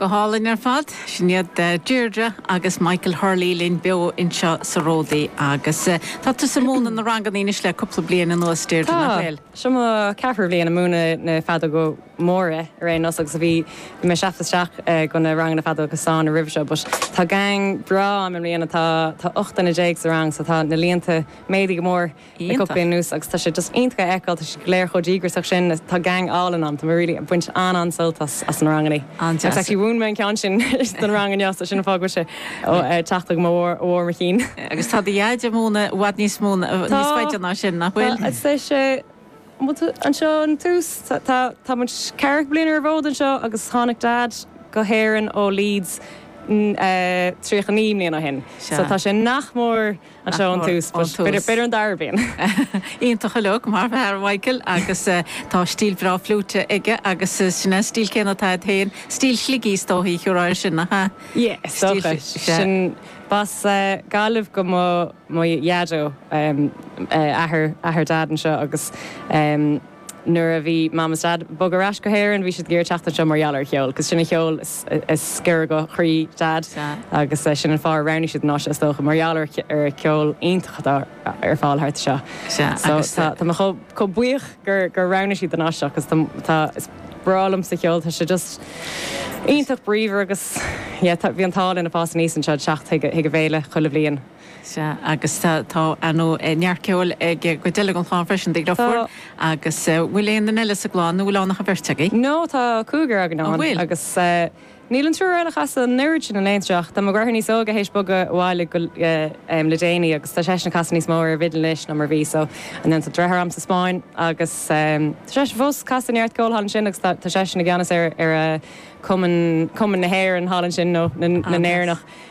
Go hálainn ar fad. Sin iad Deirdre agus Michael Hurley linn beo anseo sa Ródaí. Agus tá tusa ag múineadh na ranganna anois le cúpla bliain anuas, Deirdre, nach bhfuil? Tá. Seo mo cheathrú bhliain ag múineadh na feadóga móra ar aon nós agus bhí mé ag teacht isteach go na ranganna feadóga stáin roimhe seo. But tá gang breá ann i mbliana, tá ocht nduine déag sa rang so tá na líonta méadaithe go mór. Iontach. Ar aon nós agus tá sé just iontach a fheiceáil, tá siad go léir chomh díograsach sin, tá gang álainn ann, tá mé really ag baint an-an-sult as as na rangannaí. An-deas. Agus actually mhúin mé an ceann sin don rang inniu so sin an fáth go bhfuil sé ag teacht agam ó bharr mo chinn. Agus tá do dhaid ag múineadh i bhfad níos mó, níos faide ná sin, nach bhfuil? Tá, I'd say anseo ón tús, tá, tá muid ceathracha bliain ar an bhfód anseo agus tháinig dad go hÉirinn ó Leeds tríocha naoi mbliana ó shin. So tá sé nach mór. Anseo ón tús. B'fhéidir an dara bliain. Iontach uilig, maith an fear, Michael agus tá stíl bhreá fliúite aige agus sin é an stíl céanna atá a'd féin, stíl Shligigh is dóichí a thabharfá air sin, nach ea? Yeah, is dócha. Sin, b'as Gaillimh do mo dhaideo, athair Dad anseo agus. nuair a bhí Mam is Dad ag bogadh ar ais go hÉirinn bhí siad ag iarraidh teacht anseo mar gheall ar an cheol cause sin an cheol is giorra do chroí Dad agus sin an fáth ar roghnaigh siad an áit seo is dócha mar gheall ar an cheol iontach atá ar fáil thart anseo so tá tá mé chomh chomh buíoch gur gur roghnaigh siad an áit seo cause tá tá is breá liomsa an ceol tá sé just iontach bríomhar agus yeah tá bhí an t-ádh linn ag fás aníos anseo ag teacht chuig chuig an bhféile chuile bhliain. Sea, agus tá neart ceoil ag cuid eile den chlann freisin, do dheirfiúr, agus bhfuil aon duine eile sa gclann nó bhfuil ann ach an bheirt agaibh? No, tá cúigear againn ann. An bhfuil? Agus níl an triúr eile ag casadh an oiread sin in aon tráth, ach tá mo dheartháir níos óige th'éis bogadh abhaile le déanaí agus tá seisean ag casadh níos mó ar an bhfidil anois ná mar a bhí, so and then tá deartháir a'm sa Spáinn agus tá seisean fós ag casadh neart ceoil thall ansin agus tá seisean i gceannas ar Chumann na hÉireann thall ansin, nó na nÉireannach.